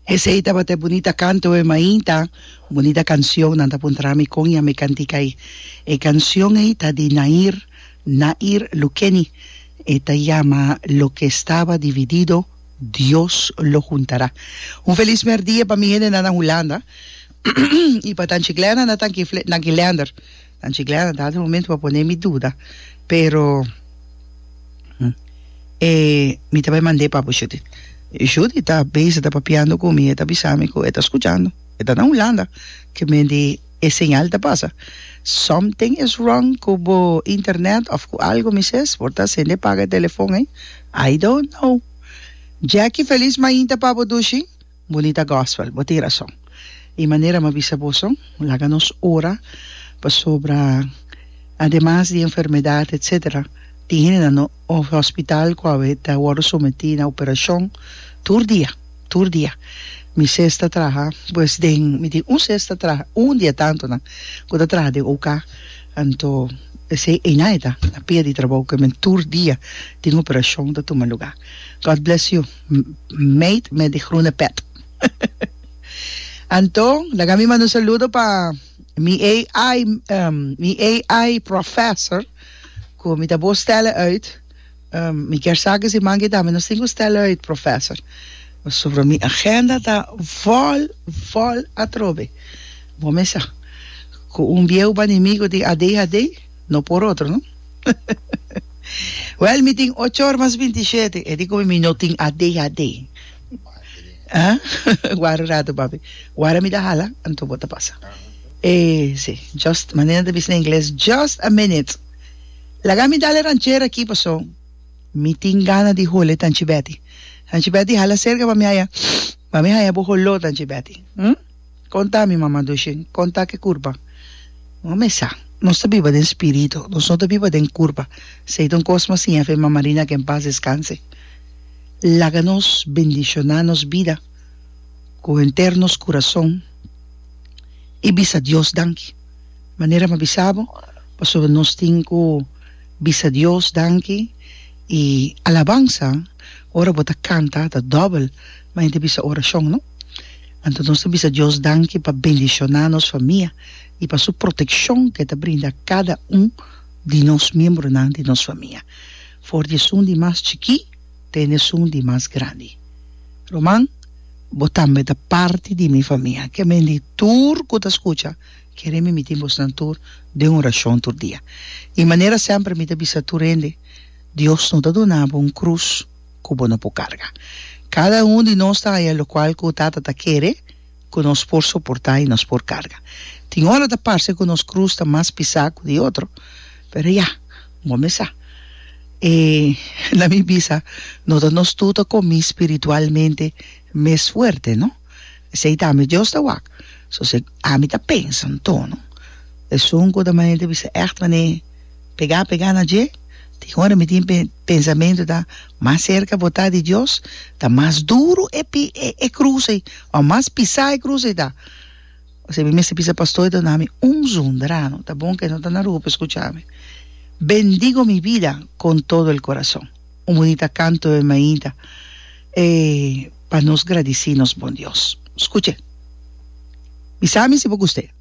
Esei tabata e bunita kanto wei mainta bunita kansion nan ta puntra mi kon yami kantika ei e kansion ei ta di Nair Nair Lukeni e ta yama loke estaba dividido Dios lo huntara un felis merdia pa mi hende nan na Hulanda i pa Tanchiklerna na Tanki Lender. Anchi Glen a dado un momento pa pone mi duda, pero e mi ta bai mand'é pa bo Judith. Judith ta bezig ta papiando cu mi, e ta bisa mi cu e ta scuchando, e ta na Hulanda, cu men di e señal ta pasa. Something is wrong cu bo internet of cu algo mi ses, por ta asende paga e telefon ey? I don't know. Jackie, feliz mainta pa bo Dushi. Bonita gospel, bo tin rason. I manera m'a bisa boso, laga nos ora pasobra ademas di enfermedad etc. Tin hende na no hospital cu a ta wordo sometí na operacion tur dia, tur dia. Mi ses ta traha pues den, mi tin un ses ta traha, un di e tantonan cu ta traha den OK. Anto esei eina e ta, na pia di trabou cu e men tur dia tin operacion ta tuma lugar. God bless you. Meid met di groene pet. Anto, laga mi manda un saludo pa mi AI, mi AI professor, cu mi ta bo stelle uit. Mi kier sa cu si manke tambe nos tin cu stelle uit, professor. Pasobra mi agenda ta vol, vol atrobe. Bo me sa cu un bieuba di mi cu tin ADHD. no por otro no Well mi tin ocho or mas binti shete e di komo mi no tin adhd ah wara un rato papi wara mi ta hala anto bo ta pasa e si just manera nan ta bisna ingles just a minute laga mi dale ranchera aki paso mi tin gana di hole tanchi Betty tanchi Betty hala cerca pa mi haya pa mi haya bo holo tanchi Betty hm Konta mi mama Dushen, konta ke kurpa? Bo me sa, nos ta biba den spiritu, nos no ta biba den kurpa, sei ta un kos mas siña fe mama Rina ke en pas deskanse. Laga nos bendishoná nos bida ku henter nos kurason i bisa Dios danki. Manera mi a bisa bo, pasobra nos tin ku bisa Dios danki i alabansa ora bo ta kanta ta dòbel, mai ta bisa orashon no. Anto nos ta bisa Dios danki pa bendishoná nos famia i pa su protekshon ku e ta brinda kada un di nos miembronan di nos famia, for di esun di mas chikí te na esun di mas grandi. Roman, bo tambe ta parti di mi famia. Ke men di tur ku ta skucha, kere mi mitin bosnan tur den orashon tur dia. I manera semper mi ta bisa tur hende, Dios no ta duna bo un krus. ku bo no por karga. Kada un di nos ta haya lokual ku Tata ta kere ku nos por soportá i nos por karga. Tin ora ta parse ku nos krus ta mas pisá ku di otro, pero ya, bo mes sa. E na mi bisa, no ta nos tur ta kominspi ritualmente mes fuerte, no? Esei ta ami Dios ta wak. So si ami ta pensa un tono, esun ku ta manera ta bisa ègt manera pegá pegá na dje, tin ora mi tin e pensamentu ta mas serka botá di Dios, ta mas duru e e krus ei, ò mas pisá e krus ei ta. Esei mi mester bisa pastor ta nami un zonder ano, ta bon ku e no ta na Aruba pa e skuchá mi, Bendigo mi bida kon todo el korason, un bunita kanto e mainta. E pa nos gradisí nos Bon Dios. Skuche! Bisami si bo gust'é.